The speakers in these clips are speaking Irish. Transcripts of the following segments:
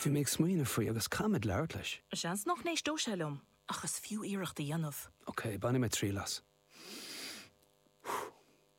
Bhí mé ag smaoineamh faoi agus caithfidh mé labhairt leis. Seans nach n-éisteodh sé liom, ach is fiú iarracht a dhéanamh. Ok, bainfidh mé triail as.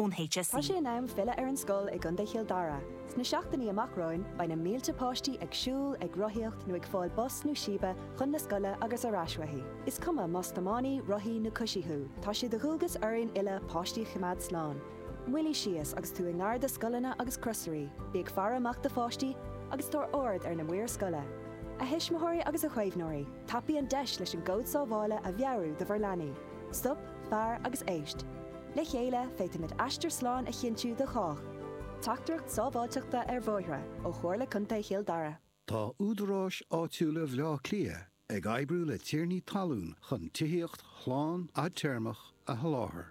ón HSE. Tá sé in am filleadh ar an scoil i gContae Chill Dara. Sna seachtainí amach romhainn, beidh na mílte páistí ag siúl, ag rothaíocht nó ag fáil bus nó síbe chun na scoile agus ar ais uaithi. Is cuma más tiománaí, rothaí nó coisí thú, tá sé de dhualgas orainn uile páistí a choimeád slán. Moilligh síos agus tú i ngar do scoileanna agus crosairí, bí ag faire amach do pháistí agus tabhair aird ar na maoir scoile. A thuismitheoirí agus a chaomhnóirí, tapaigh an deis leis an gcód sábhála a mheabhrú do bhur leanaí. Stop, fair agus éist. Le chéile, féadfaimid aistear slán a chinntiú do chách. Teachtaireacht sábháilteachta ar bhóithre ó Chomhairle Contae Chill Dara. Tá údaráis áitiúla Bhleá Cliath ag oibriú le tiarnaí talún chun tithíocht shlán fhadtéarmach a sholáthar.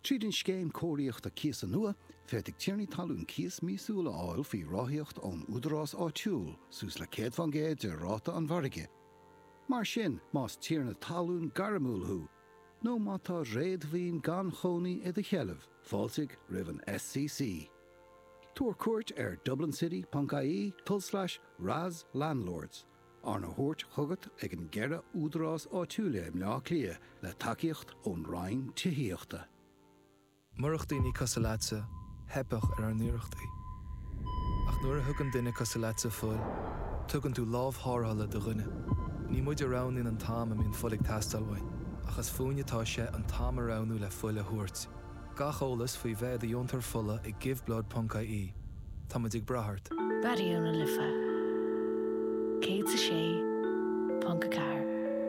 Tríd an Scéim Cóiríochta Cíosa nua, féadfaidh tiarnaí talún cíos míosúil a fháil faoi ráthaíocht ón údarás áitiúil, suas le 100 fán gcéad de ráta an mhargaidh. Mar sin, más tiarna talún gairmiúil thú, nó má tá réadmhaoin gan chónaí i do sheilbh, fáiltigh roimh an SCC. Tabhair cuairt ar dublincity.ie, tulslais raslandlords. Arna thabhairt chugat ag an gceithre údarás áitiúil i mBleá Cliath le tacaíocht ón Roinn Tithíochta. Murach daoine cosuil leatsa, theipfeadh ar ár n-iarrachtaí. Ach nuair a thugann duine cosuil leatsa fuil, tugann tú lámh thárrthala do dhuine. Ní muid a roghnaíonn an t-am a mbíonn fuil ag teastáil uainn, ach is fúinn atá sé an t-am a roghnú le fuil a thabhairt. Gach eolas faoi bheith i do dheontóir fola ag giveblood.ie. Tá muid ag brath ort! Raidió na Life 106.4.